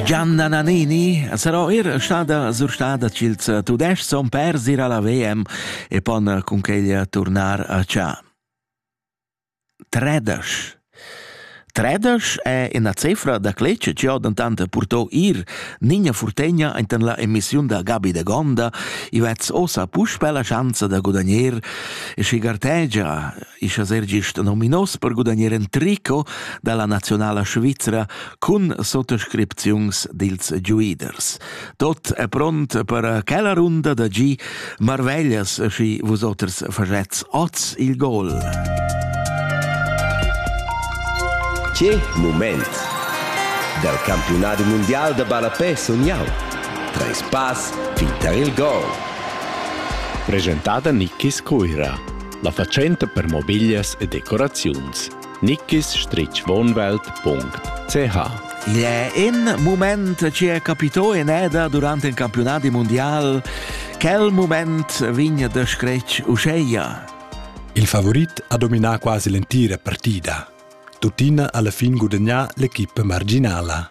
Gianna Nannini sarò er stada surstada ch'ils Tudescs son pers ir alla VM e pon cun quella turnar a Cha. Tredesch. Tredesch è una cifra da clece che ho dantante purtò ir Nina Furtegna enten la emissiun da Gabi de Gonda i vez osa puspe la chance da gudagnare e si gartegia ischa ser gist nominos per gudagnare un trico dalla nazionala Svizzera cun sottoscripziuns dils giuiders. Tot è pront per quella runda da gi marveglias schi vusoters facetz oz il gol. Che moment! Dal campionado mondial da ballapè sun jau. Treis pass fin tar il gol. Presentada Nickis Coira, la fatschenta per mobiglias e decoraziuns. nickisstrichwohnwelt.ch Il è in mument che è capito in eda durante il campionat mondial. Quel moment vegna da scretg uscheia. Il favorit ha dominato quasi l'entira partita. Tuttina alla fin gudagnà l'equipe marginala.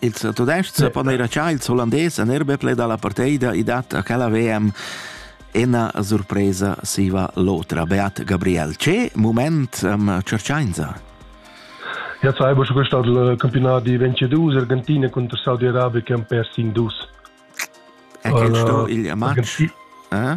Il tudestg sa pon era già il Hollandes en erbetle dalla parteida i dat a quella VM ena surpresa siva l'otra. Beat Gabriel, ce moment am cerciainza? Ja, sai, bo gestat il campionat di 22 Argentina contro Saudi Arabia che han perso in dus. E che sto il match? Eh?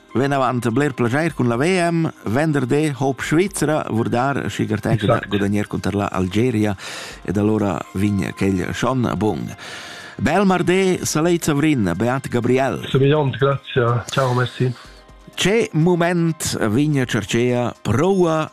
Venavant bler plaschair cun la VM, venderdi Hope Svizzera, vurdar schi gartegia gudagnare contro l'Algeria ed allora vin quel schon bun. Bel mardi, Saleit Savrin, Beat Gabriel. Subiant, grazie. Ciao Messi. C'è moment vigna cercea proua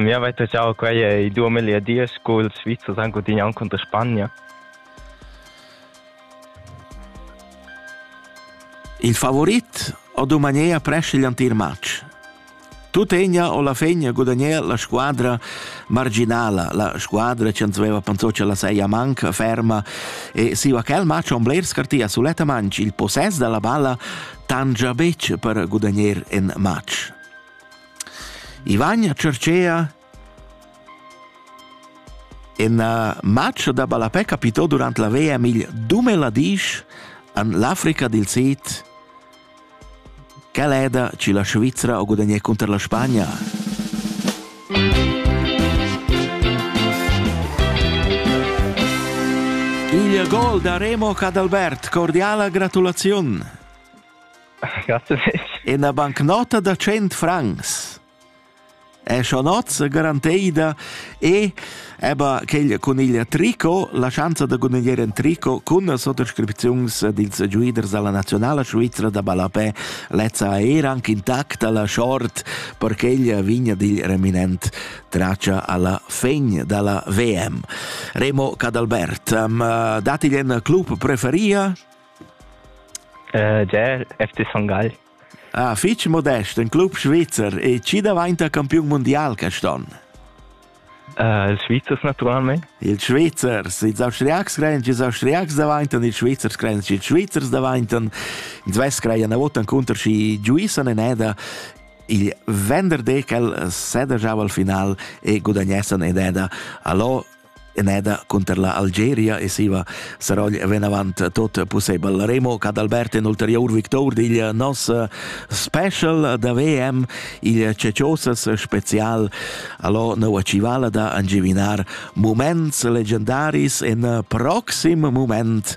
Miu vai taschau quei ei duos meglierdias culs Svizzers han gudignau cunter Spagna. Il favorit ho dumanea presch igl antier match. Tut egna o la fegna gudagnea la squadra marginala, la squadra che ans veva pensò che la seia manca, ferma e siva quel match on bler scartia sulettamain il possess dalla balla tangia bec per gudagner en match. I vagna Cercea en match da ballapè capitò durant la VM il Dumeladisch an l'Africa dil Sid quel è da ci la Svizzera o gudagnè contro la Spagna. Il gol da Remo Cadalbert, cordiala gratulaziun! Ina bancnota da 100 francs è Chanozza garanteida e aber quel cun il tricot, la schanza da gudagnare in tricot cun las sottoscripziuns dils giuiders dalla nazionala svizra da ballapè lezza è era anche intacta la short per quella vigna dil reminent traccia alla fegn dalla VM. Remo Cadalbert, um, dati in club preferia? Ger FC Son Gagl. Ah, fitg modest, in club svizzer e chi davainta campiun mundial quest'on? Uh, ils Svizzers naturalmente. Ils Svizzers, ils Austriacs creien che ils Austriacs davaintan, ils Svizzers creien che ils Svizzers davaintan. Ins vess creien a votan contro si giuissan in eda. Il venderdi quel sedagiava al final e gudagnessan ed eda. Allora Eneda cunter la Algeria e siva Sarogl venavant tot pussebel. Remo Cadalbert in ulterior victor digl nos special da VM, il Ceciosas special allo nova civala da angivinar moments legendaris in proxim moment